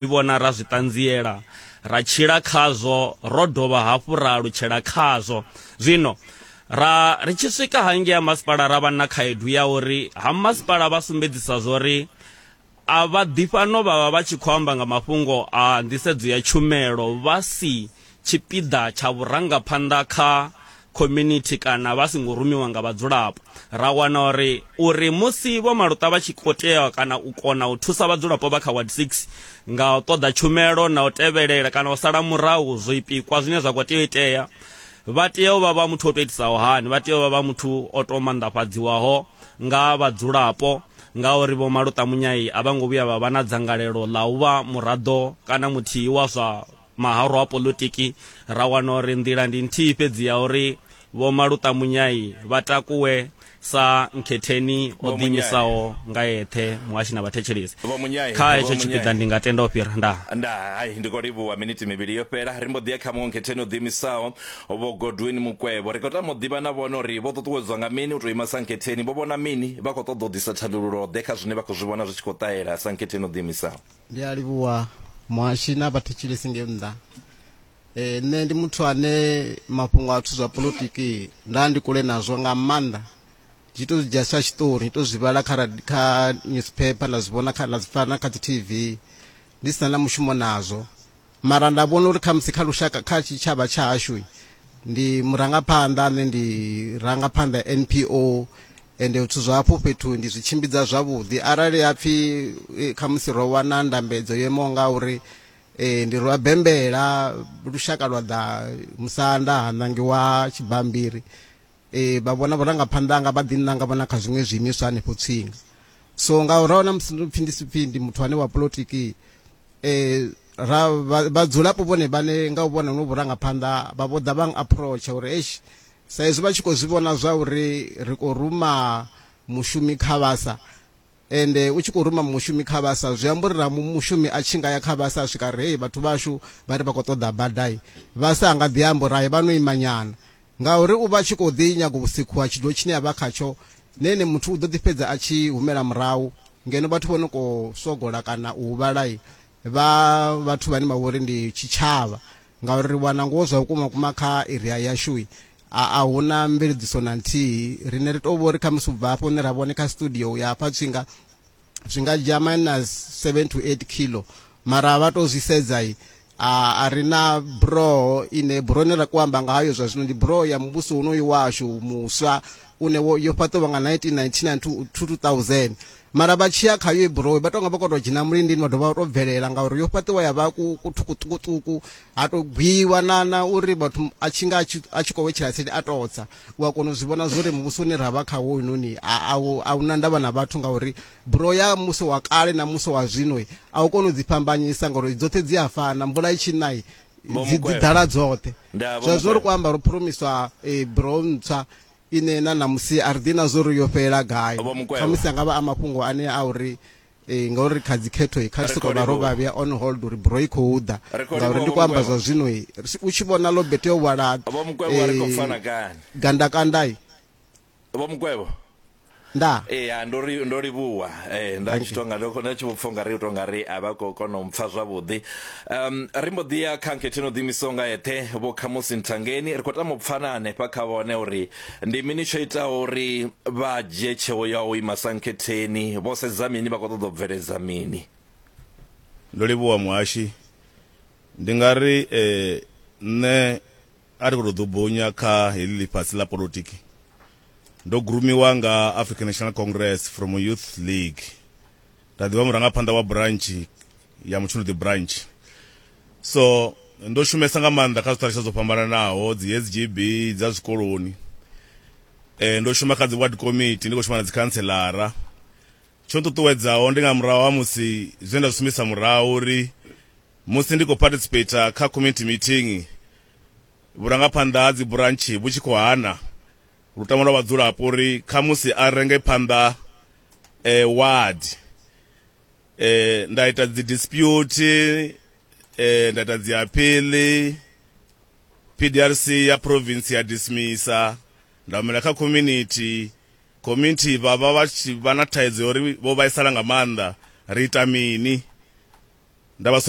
zwi vhona ra zwi ṱanziela ra tshila khazwo ro dovha hafhu ra alutshela khazwo zwino ra ri tshi swika hangei ha masipala ra vha na khaedu ya uri ha masipala vha sumbedzisa zwori a vha ḓi fhano vha vha vha tshi khou amba nga mafhungo a nḓisedzo ya tshumelo vha si tshipiḓa tsha vhurangaphanḓa kha community kana vha songo rumiwa nga vhadzulapo ra wana uri uri musi vho maluṱa vha tshi kho tea kana u kona u thusa vhadzulapo vha kha ward 6 nga u ṱoḓa tshumelo na u tevhelela kana u sala murahu zwo ipikwa zwine zwa kho tea u itea vha tea u vha vha muthu o to itisaho hani vha tea u vha vha muthu o to manḓafhadziwaho nga vhadzulapo ngauri vho maluṱa munyai a vha ngo vhuya vha vha na dzangalelo ḽa u vha muraḓo kana muthihi wa zwa Mahoro a poḽotiki, ra wana uri nḓila ndi nthihi fhedzi ya uri Vho Maluṱa Munyai vha takuwe sa nkhetheni o ḓiimisaho nga eṱhe muhashi na vhathetshelesi. Kha hetsho tshipiḓa ndi nga tenda u fhira. Ndaa. Ndaa. Hai, ndi khou livhuwa. Miniti mivhili yo fhela, ri mbo ḓi ya kha muṅwe nkhetheni o ḓiimisaho, Vho Godwin Mukwevho. Ri khou tama u ḓivha na vhone uri vho ṱuṱuwedzwa nga mini u tou ima sa nkhetheni, vho vhona mini, vha khou ṱoḓa u ḓisa thandululo-ḓe kha zwine vha khou zwi vhona zwi tshi khou ṱahela sa nkhetheni o ḓiimisaho. ndi a livhuwa muhashi na vhathetshelesi nge nnḓa e, nṋe ndi muthu ane mafhungo a zwithu zwa politiki nda ndi kule nazwo nga maanḓa ndi to dzhia sa tshiṱori ndi to zwi vhala kha radi- kha newspaper nda zwi vhona kha nda zwi pfana kha dzi tv ndi si na na mushumo nazwo mara nda vhona uri khamusi kha lushaka kha tshitshavha tsha hashu ndi murangaphanḓa ane ndi rangaphanḓa npo ende zwithu zwa hafho fhethu ndi zwi tshimbidza zwavhuḓi arali ha pfhi eh, khamusi ro wana ndambedzo yo imaho nga uri um ndi rwa bembela lushaka lwa ḓa musanda ha ṋangiwa tshibambiri Ee, vha vhona vhurangaphanḓa hanga vha ḓiṋanga vhona kha zwiṅwe zwiimiswa hanefho tsinga so nga uraho na musi ndipfi ndi sipfi ndi muthu ane wa polotiki um ra vhadzulapo vhone vhane nga u vhona no vhurangaphanḓa vha vho ḓa vha approacha uri eish sa izwi vha tshi khou zwi vhona zwa uri ri khou ruma mushumi kha vhasa Ende u tshi khou ruma mushumi kha basa zwi amba uri na mushumi a tshi nga ya kha basa a swika a ri, Hei, vhathu vhashu vha ri vha khou ṱoḓa bada. Basa a nga ḓi amba uri, Hai, vha no ima nyana. Ngauri u vha a tshi khou ḓi nyaga u sikhuwa tshidulo tshine a vha khatsho, ne ene muthu u ḓo ḓi fhedza a tshi humela murahu. Ngeno vhathu vho no khou sogola kana u huvhala vha vhathu vhane vha vha uri ndi tshitshavha. Ngauri ri wana ngoho zwa vhukuma-vhukuma kha eria yashu, a a hu na mveledziso na nthihi rine ri tou vho ri khamusi u bva hafho hune ra vhone kha studio u ya hafha tswinga zwi nga dzhia minus 7 to 8 kilo mara vha tou zwi sedza i a ri na buroho ine buroho ine ra ku amba nga hayo zwa zwino ndi buroho ya muvhuso unoyu washu muswa une wo yo fhaṱiwa nga 1999 to 2000 mara vha tshiya khayo i burowe vha tonga vha kho to dzhena mulindini vha dovha vha to bvelela ngauri yo fhaṱiwa ya vha ku ṱhukuṱhukuṱhuku ha to gwiwa na na uri vhathu a tshi nga a tshi khou wetshela tsini a totsa u a kona u zwi vhona zwori muvhuso une ra vha kha wo inoni a hu na ndavha na vhathu ngauri buro ya musi wa kale na musi wa zwino a u kona u dzi fhambanyisa ngauri dzoṱhe dzi a fana mvula i tshi nai dzi ḓala dzoṱhe zwa zwino ri khou amba ro phuromiswa eh, buro ntswa ine na ṋamusi a ri ḓivhi na zwa uri yo fhelela gai. Khamusi a nga vha a mafhungo anea a uri ngauri kha dzikhetho kha ri sokou vha ro vha vhea on hold uri buroho i khou ḓa ngauri ndi khou amba zwa zwino u tshi vhona ḽo bete yo hwala gandakanda. Nda. Ee, ha, ndo ri, ndo livhuwa. Ee, nda tshi Dankie. tonga, ndo ndo tshi vho pfa ungari u tonga ri a vha khou kona u mpfa zwavhuḓi. Um, ri mbo ḓi ya kha nkhethe no ḓiimisaho nga eṱhe, Vho Khamusi Nthangeni. Ri khou tama u pfa na hanefha kha vhone uri ndi mini tsho itaho uri vha dzhie tsheo ya u ima sa nkhetheni, vho sedza mini, vha khou ṱoḓa u bveledza mini. Ndo livhuwa muhashi. Ndi nga ri eh, nṋe A ri khou tou ḓubunya kha heḽi ḽifhasi ḽa polotiki, ndo gurumiwa nga African National Congress from Youth League nda ḓivha murangaphanḓa wa burantshi ya Mutshunduḓi branch. So ndo shumesa nga maanḓa kha zwithalusha zwo fhambananaho, dzi SGB dza zwikoloni. Eh ndo shuma kha dzi ward committee ndi khou shuma na dzi khantselara. Tsho nṱuṱuwedzaho ndi nga murahu ha musi zwe nda zwi sumbedzisa murahu uri Musi ndi khou participater kha community meeting, vhurangaphanḓa ha dzi burantshi vhu tshi khou hana lutamo lwa vhadzulapo uri khamusi a renge phanḓa ward, nda ita dzi dispute, nda ita dzi appeal, PDRC ya province ya dismisser, nda humela kha community, community vha vha vha tshi vha na thaidzo ya uri vho vhaisala nga maanḓa, ri ita mini? Nda vha sumbedza.